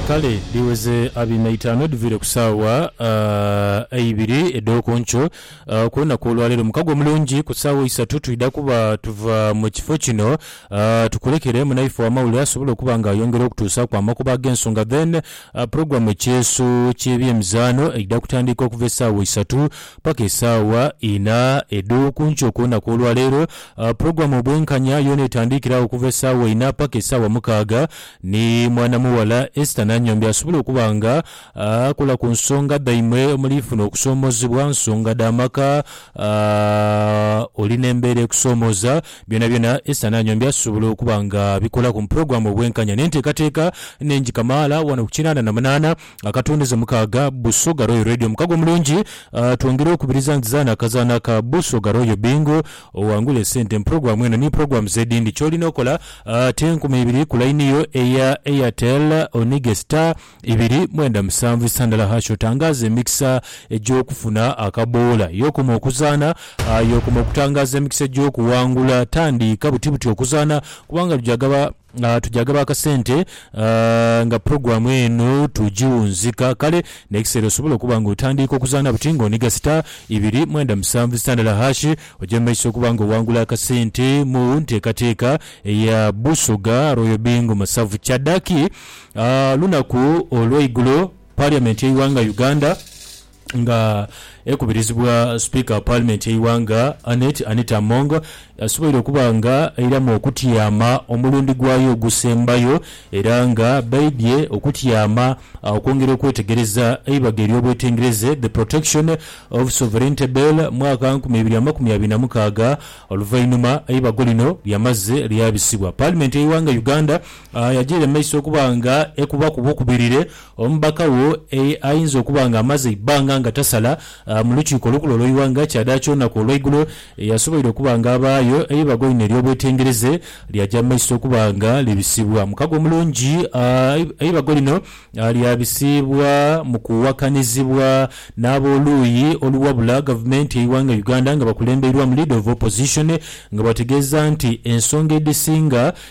Kale dhiweze abina itaanu edhiviire ku saawa eibiri edh'oku nkyo. Ku lunaku olwaleero mukago mulungi ku saawa eisatu twidha kuba tuva mu kifo kino tukulekere munaife ow'amawulire asobole okuba nga ayongera okutuusaaku amakubo ag'ensonga then pulogulaamu Ekyeeso ky'ebyemizaano eidha kutandika okuva esaawa eisatu Paka esaawa inha edho kunkyo kwonaku olwaleero, pulogulamu Obwenkanya yoona etandiikira agho okuva esaawa inha paka esaawa mukaaga ni mwana mughala Esther Nanyombi asobola okuba nga akola ku nsonga dhaimwe omuli funa okusoomozebwa, nsonga dha maka, oli n'embeera ekusoomoza byonabyona Esther Nanyombi asobola okuba nga abikolaku mu pulogulamu Obwenkanya n'enteekateeka enhengi kamaala wano ku kinaana na munaana. nga katundize mukaaga Busoga Royal Radio. Omukago omulungi twongere okubiriza nti zaana akazaana ka Busoga Royal Bingo owangule esente mu pulogulamu eno ni pulogulamu z'edindi. Ky'olina okola te enkumi ibiri ku layini yo eya Airtel onige star ibiri mwenda musanvu isa ndala hash otangaaze emikisa egy'okufuna akaboola. Y'okoma okuzaana, y'okoma okutangaaza emikisa egy'okuwangula. Tandiika buti buti okuzaana kubanga luja gaba. Tugya gaba akasente nga pulogulaamu eno tugiwunzika kale n'ekiseera osobole okuba nga otandiika okuzaana buti ng'oniga sita ibiri mwenda musanvu sitandala hashi. Oja mu maiso okuba nga owangula akasente mu nteekateeka eya Busoga Royal Bingo Masavu. Kyaddaki lunaku olw'eigulo, Parliament y'eighanga Uganda, Nga ekubirizibwa Sipiika wa Paalimenti y'eighanga Annet Anita Among, yasoboire okuba nga airamu okutyama omulundi gwayo ogusembayo era nga baidhye okutyama okwongera okwetegereza eibaga ery'obwetengereze The Protection of Sovereignty Bill mwaka nkumi ibiri amakumi abiri na mukaaga oluvainhuma eibago lino lyamaze lyabisibwa Paalimenti y'eighanga Uganda yagyeire mu maiso okuba nga ekubaku bukubirire Omubaka wo ayinza okuba nga amaze eibbanga nga tasala mu Lukiiko Olukulu olw'eighanga kyadaaki olunaku olweigulo yasoboire okuba nga abaayo eibaga einho ery'obwetengereze lyaja mu maiso okuba nga libisibwa. Mukago omulungi, eibago lino lyabisibwa mu kuwakanizibwa n'ab'oluuyi oluwabula Gavumenti y'eighanga Uganda nga bakulembeirwamu Leader of Opposition nga bategeeza nti ensonga edhisinga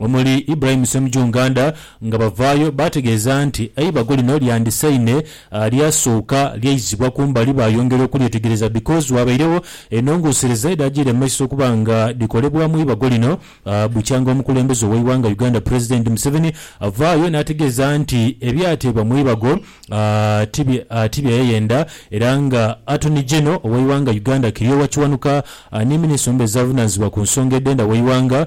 omuli Ibrahim Ssemujju Nganda nga bavaayo baategeeza nti eibago lino lyandisaine lyasooka lyaizibwa kumbali baayongera okulyetegereza because waabairegho enhongosereza edhaagiire mu maiso okuba nga dhikolebwamu eibago lino bukyanga omukulembeze ow'eighanga Uganda President Museveni avaayo naategeeza nti ebyateebwa mu eibago ti byeyayenda era nga Attorney General ow'eighanga Uganda Kiryowa Kiwanuka ni Minister omubeezi avunaanyizibwa ku nsonga edh'enda w'eighanga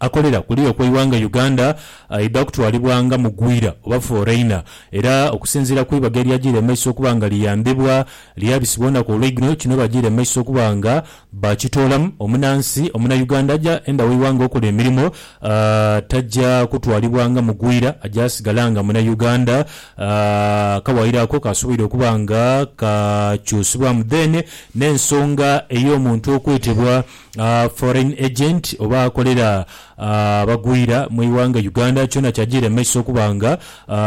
akolera kule okw'eighanga Uganda aidha kutwalibwa nga mugwira oba foreigner era okusinziira ku ibaga eryajiire mu maiso okuba nga liyambibwa lyabisibwa olunaku olweigulo kino bajiire mu maiso okuba nga bakitoolamu omunansi omunauganda aja enda w'eighanga okola emirimo taja kutwalibwa nga mugwira aja sigala nga munauganda akawaayiro ako kasoboire okuba nga kakyusibwamu then n'ensonga ey'omuntu okwetebwa foreign agent oba akolera abagwira mu ighanga Uganda kyona kyajiira mu maiso okuba nga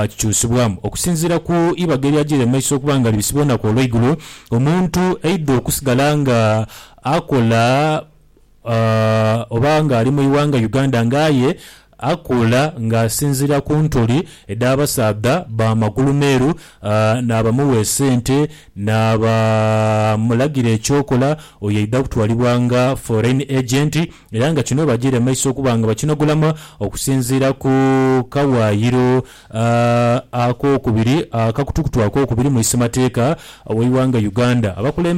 kikyusibwamu. Okusinziira ku ibaga eryajiira mu maiso okuba nga libisibwa olunaku olweigulo, omuntu aidha okusigala nga akola oba nga ali mu ighanga Uganda nga aye Akuula ng'asinziira ku ntuli edh'abasaadha ba magulu meeru, naabamugha esente, naabamulagira eky'okola, oyo aidha kutwalibwa nga foreign agent era nga kino bajiire mu maiso okuba nga bakinogolamu okusinziira ku kawaayiro ak'okubiri, akakutukutu ak'okubiri mu isimateeka w'eighanga Uganda. Abakulembeze.